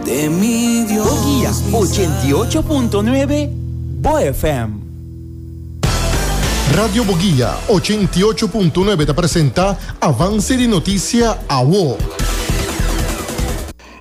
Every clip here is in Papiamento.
Toquilla ochenta i ocho punto nuebe, bo FM. Radio Boguia ochenta i ocho punto nuebe ta presenta Avance di Noticia Awo.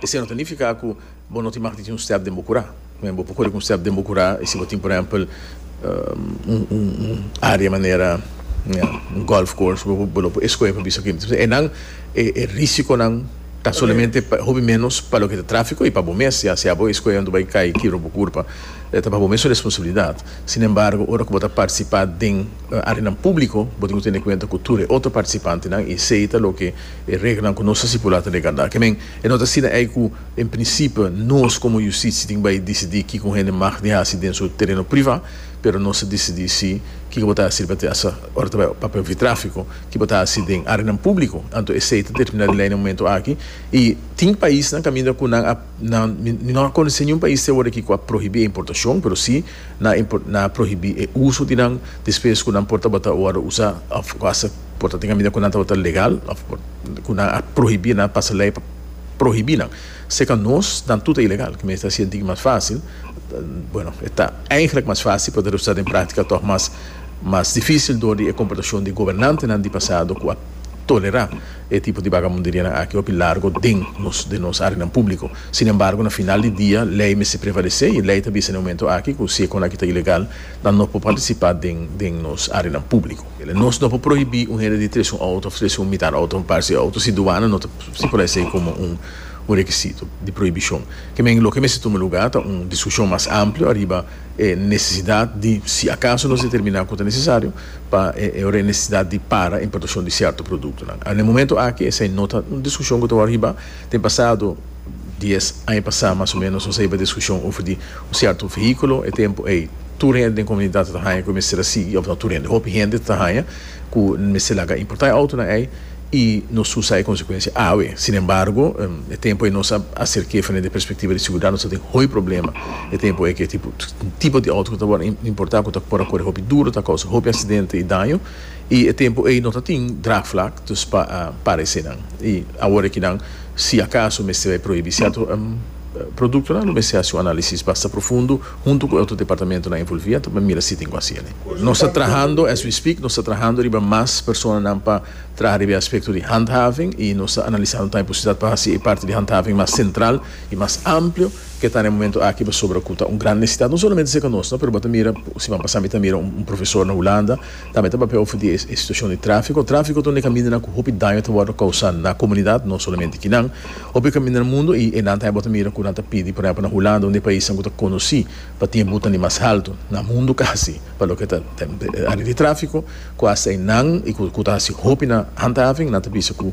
Esei no ta nifiká ku bo no tin mag di tin un stèp den bo kurá. Mi bo por kore ku un stèp den bo kurá i si bo tin por ehèmpel un área manera un gòlf course bo lo por eskohe pa bisa kiko tin. Esei nan e risikonan. Ta solamente pa hopi menos pa loke ta tráfiko i pa bo mes, ya sea bo e skoe anto bai kai kibra bo kurpa, ta pa bo mes su responsabilidat. Sin embargo, ora ku bo ta partisipá den áreanan públiko, bo tin ku tene kuenta ku tur e otro partisipantenan i esei ta loke e reglanan ku nos a stipulá ta regardá. Kemen, e no ta asina ei ku en prinsipio nos komo Yustisi tin bai disidí kiko un hende mag di hasi den su tereno privá, pero nos ta disidí si kiko bo ta hasi riba te asa ora ta bai papia òf di tráfiko. Ki bo ta hasi den arenan públiko, anto esei ta terminá di lei na momentu aki, i tin paisnan kaminda ku nan a, nan, mi, mi no a konosé niun pais te aworakí ku a prohibí e importashon, pero sí nan a, nan a prohibí e uso di nan, despues ku nan por tabata ora usa òf ku hasta por ta tin kaminda ku nan tabata legal òf ku nan a prohibí, nan a pasa lei pa prohibí nan. Seca nos, dan tut e ilegal, ki mester haci'e digi mas facil, bueno, e ta eigenlic mas facil, pero ta resulta den practica tog mas mas dificil door di e comportacion di gobernantenan di pasado cu a tolera e tipo di vagabunderianan aki hopi largo den nos den nos areanan publico. Sin embargo, na final di dia, ley mester prevalece y ley ta bisa na e momento aki cu si e con aki ta ilegal, nan no por participa den den nos areanan publico. Kila nos no por prohibí un hende di trese un outo òf trese un mitar outo òf un parsi outo si duana no ta stipulá esei komo un rekisito di prohibishon. Kemen loke mester tuma lugá ta un diskushon mas amplio ariba e nesesidat di si akaso nos determiná ku ta nesesario pa e nesesidat di para importashon di sierto produktonan. Awe na e momentu aki esei no ta un diskushon ku ta wòrdu hibá. Tin pasado dies aña pasá mas o ménos nos a hiba diskushon over di un sierto vehíkulo. E tempu ei tur hende den komunidat a ta haña ku e mester a sigui, òf no tur hende, hopi hende ta haña ku nan mester laga importá e outo na ei i nos usa e konsekuensia awe. Sinembargo, e tempu ei nos a haser ke frente di e perspektiva di seguridat nos a tin hopi problema e tempu ei ku e tipo di outo ku ta wòrdu importá ku ta por a kore hopi duru, ta kousa hopi aksidente i daño. I e tempu ei no ta tin draagvlak, dus pa parese nan. I awor aki nan, si akaso mester bai prohibí sierto produktonan, lo mester hasi un analisis basta profundo huntu ku e otro departamentonan envolví anto pa mira si tin ku hasi elei. Nos ta trahando, as we speak, nos ta trahando riba mas personanan pa traha riba e aspekto di handhaving i nos ta analisando tambe posibilidat pa hasi e parti di handhaving mas sentral i mas amplio ke ta na e momento aki pasobra ku ta un gran nesitat no solamente serka nos no pero bo ta mira, siman pasá mi ta mira un profesor na Hulanda. Tambe ta papia ofendí e situashon di tráfiko. Tráfiko ta un di e kamindanan ku hopi daño ta wòrdu kousá na komunidat, no solamente kinan. Hopi kamindanan mundu i enan ta haya bo ta mira ku nan ta pidi, por ehèmpel na Hulanda, un di e paisnan ku ta konosí pa tin e butan di mas haltu na mundu kasi pa loke ta área di tráfiko, ku hasta enan i ku ta hasi hopinan handhaving, nan ta bisa ku.